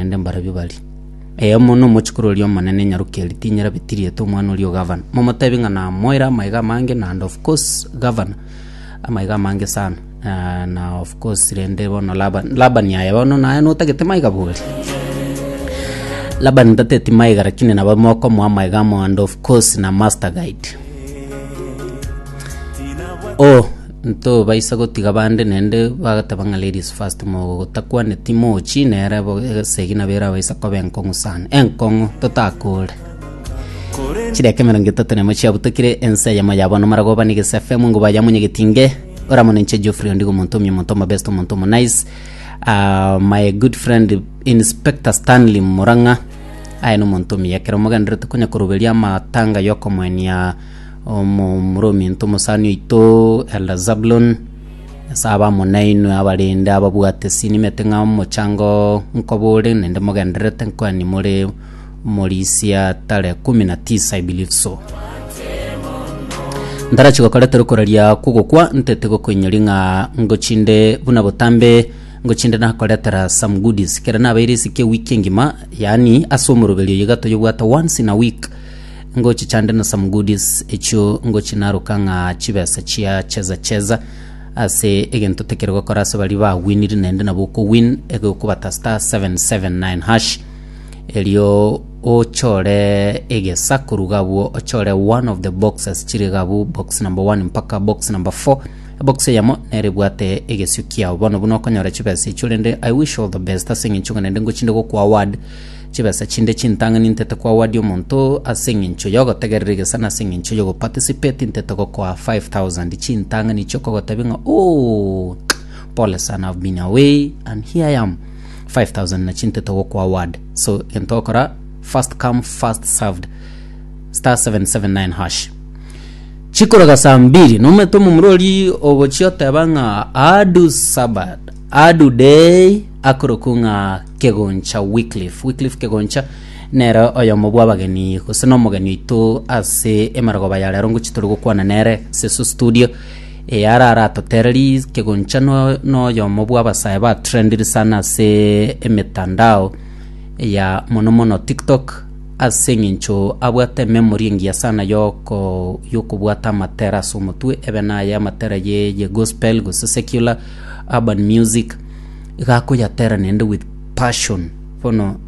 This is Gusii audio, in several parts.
naende mbarabwo bari. Eyomo nomochikoro oria omonene nyaroki eria tinyera bitiriete omwana oria o gavana, momotebi ng'a namoire amaiga amange na and of course gavana amaiga amange sana na na of course rende bono Laban Labani aye bono naye notagete maiga bori. Labani tateti maiga rakini nabo mokomoa amaiga amo and of course na master guide. Oh. Ntobaisa gotiga bande naende bagateba ng'a ladies first mogotakwaneti mochi nere bo esegi nabo erabaisa koba enkong'u sana enkong'u totakore chidakika emerongo etato nemo chiabutekire ense eyemo ya bono maragoba ni gese fm ngo baya munyegetinge oramo ninche Geoffrey ondigo omonto omya omonto omobest omonto omonice uh, my good friend inspector stanley murang'a aye nomonto omuya ekero mogenderete konya koroberia amatanga yokomoenia Omomura ominto omosani oito Elder Zabulon, ase abamo nainwe abarende ababwate sinimete ng'a omochango oo nkoba ore, naende mogendererete nkoa nimore omorisia tare kumi na tisa I believe so. Ntarachi gokoreta rokoraria kw'ogokwa ntete gokoinyori ng'a ngochinde buna botambe ngochinde nakoretera some goodies kera nabeire esike ewiki engima yaani ase omoroberi oyo iga toyebwate once in a week Ngochi chande na some goodies echio ngochi naroka ng'a chibesa chia cheza cheza ase egento tekero gokora ase bari ba winiri naende nabo okowin egokobata star 779 hash erio ochore egesa koruga abwo ochore one of the boxes chire gabu box number 1 mpaka box number 4 box eyamo nere bwate egesio kiao bono buna okonyora chibesa echio rende i wish all the best ase eng'encho ng'a naende ngochinde gokwa award Chibesa chinde chintang'ani ntete koawadia omonto ase engencho y'ogotegerera egesa na ase engencho y'ogoparticipate ntete gokoa 5000 chintang'ani chi'okogotebia ng'a ooh pole sana I've been away and here I am 5000 na chintete gokwa award so egento okora first come first served star 779 hash chikoroga saa mbiri nomanyete omomura oria ogochia oteba ng'a adu sabad Adudei akorokwa ng'a Kegoncha Wycliffe. Wycliffe Kegoncha nere oyomo bw'abageni gose nomogeni oito ase emarogoba ya rero ngochi tore gokwana nere Seso Studio eyare aratotereri Kegoncha no noyomo bw'abasae ba trendire sana ase emetandao ya mono mono TikTok ase eng'encho abwate memory engiya sana yoko yokobwata amatera ase omotwe ebe naye amatera ye ye gospel gose secular Urban music iga akoyatera nende with passion bono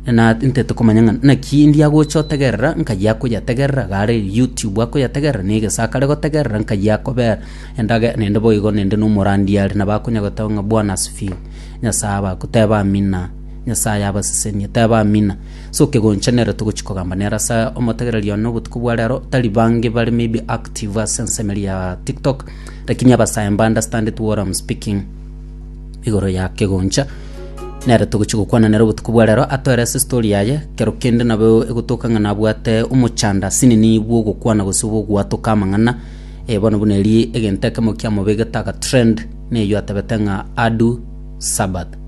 na nte tokomanya ng'a naki ndi agocha otegerera nkayi akoyategerera iga are youtube akoyategerera na egesaku are gotegerera nkayi akobera endage nende boigo nende na omorandi are nabo akonya goteba ng'a bwana asifiwe Nyasaye abako teba amina Nyasaye abasesenie teba amina so kegoncha nere togochi kogamba nere ase omotegereri one obotuko bwa rero tari bange bare maybe active ase ensemeri ya tiktok. Lakini abasae mba understanded what I'm speaking igoro ya kegoncha nere togochi gokwana nere obotuko bwa rero atoerese story yaye kero kende nabo egotoka ng'a nabwate omochanda sinini bw'ogokwana gose bw'ogwatoka amang'ana eh, bono buna eri egento ekemo kiamobegete agatrend neyio atabete ng'a adu sabbath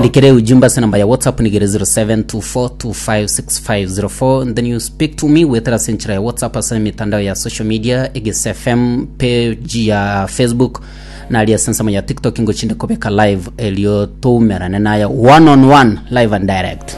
Ndikere ujumbe ase namba ya WhatsApp nigere 0724256504 and then you speak to me gwetera ase enchera ya WhatsApp ase emitandao ya social media Egese FM page ya Facebook nari ase ensemo ya TikTok ngochinde kobeka live erio toumerane naye one on one live and direct